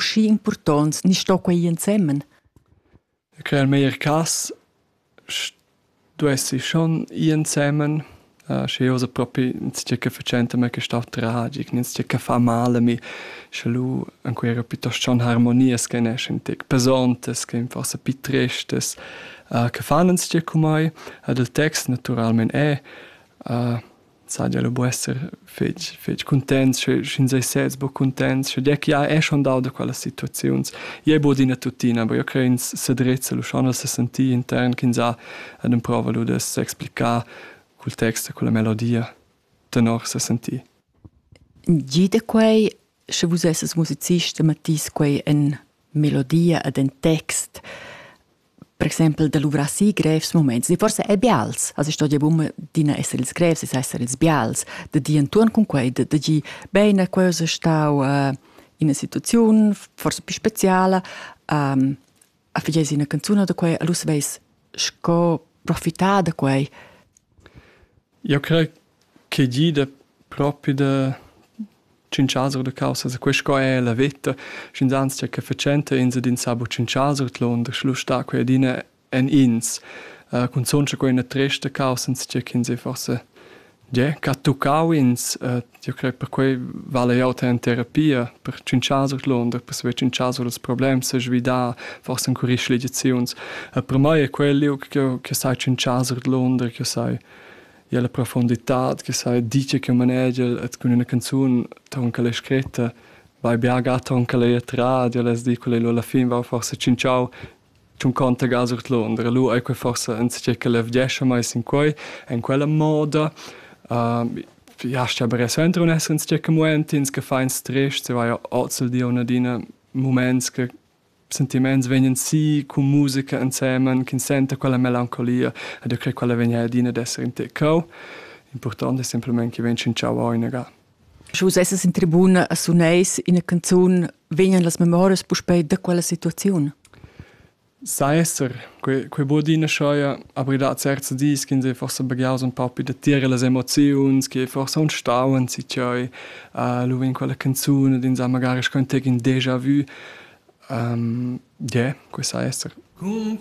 schi impurtonts ni sto quei ensemen? Che al meglier cas duessi schon ensemen Uh, sche io sa propi ins che facente me che sta tragic, ins che fa male mi sche lu an quera piuttosto schon harmonias che ne schentic pesontes che forse pi tristes uh, che fan ins che cum ai ad il text naturalmente è uh, saja lu bu esser fetg fetg cuntents sche sch'ins ei sez buca cuntents sche gia che ja è schon dau da quellas situaziuns jei bod ina tuttina aber io cre ins sedrezza lu schon a sesentir intern ch'ins ha ed emprova lu da s'explicar cul text e culla melodia tenor sesentir Gie da quei sche vus esses musicist e mettís quei en melodia ed en text per exempel da luvrar si grevs moments, di forse è bials. Also storia buma d'ina essere ils grevs, es essere ils bials, da di entuorn cun quei, da, da gi bene, quasi stau uh, in situaziun, forse più speciale, um, a figesi una canzone da quei, allora veis sco profitar da quei. Io credo Che gida propi da tschinchazur da caussas. Quest sco è la veta. Sch'ins tge che fatschenta, ins ed ins sa buc tschinchazur l'onda. Schluss sta quei adina en ins. Uh, cunzunt sche quei è tresta caussa, tge ch'ins è forse yeah, che ha tuccau ins. Uh, io credo per quei vala jau te en terapia, per tschinchazur l'onda, per saver tschinchazur ils problems, svidar, forse en curir schligiaziuns. Uh, per mai è quel liug che sai tschinchazur l'onda, che sai Ja la profonditad che sai dice che manegia et cun üna canzun ton che l'hai scritta vai bia ga ton che l'hai tra ja las di quella alla fin va forse cinciau tun conta ga sur Londra lu ei quei forse en che che levgescha mai sin quei en quella moda uh, ja sta bere sentro un essere in che moment ins che fein stress se vai ozzel di una dina moments che Sentimaints vegnan sii cun musica insemen ch'ins senta quella melancolia ed eu cret quella vegn adina ad esser in te cheu. Important es simplamaing chi vegn tschintschau o inagà. Sche vus essas in tribuna e suneis ina canzun, vegnan las memorias puspei da quella situaziun? Sai esser, quei, quei buca adina scheia, aber da certs dis ch'ins è forse baghiaus un pauc da tier las emoziuns, che forse un stau an si tscheu, lu vegn quella canzun ed ins ha magari schon tegn deja vu. Yeah, quei sa esser. Cun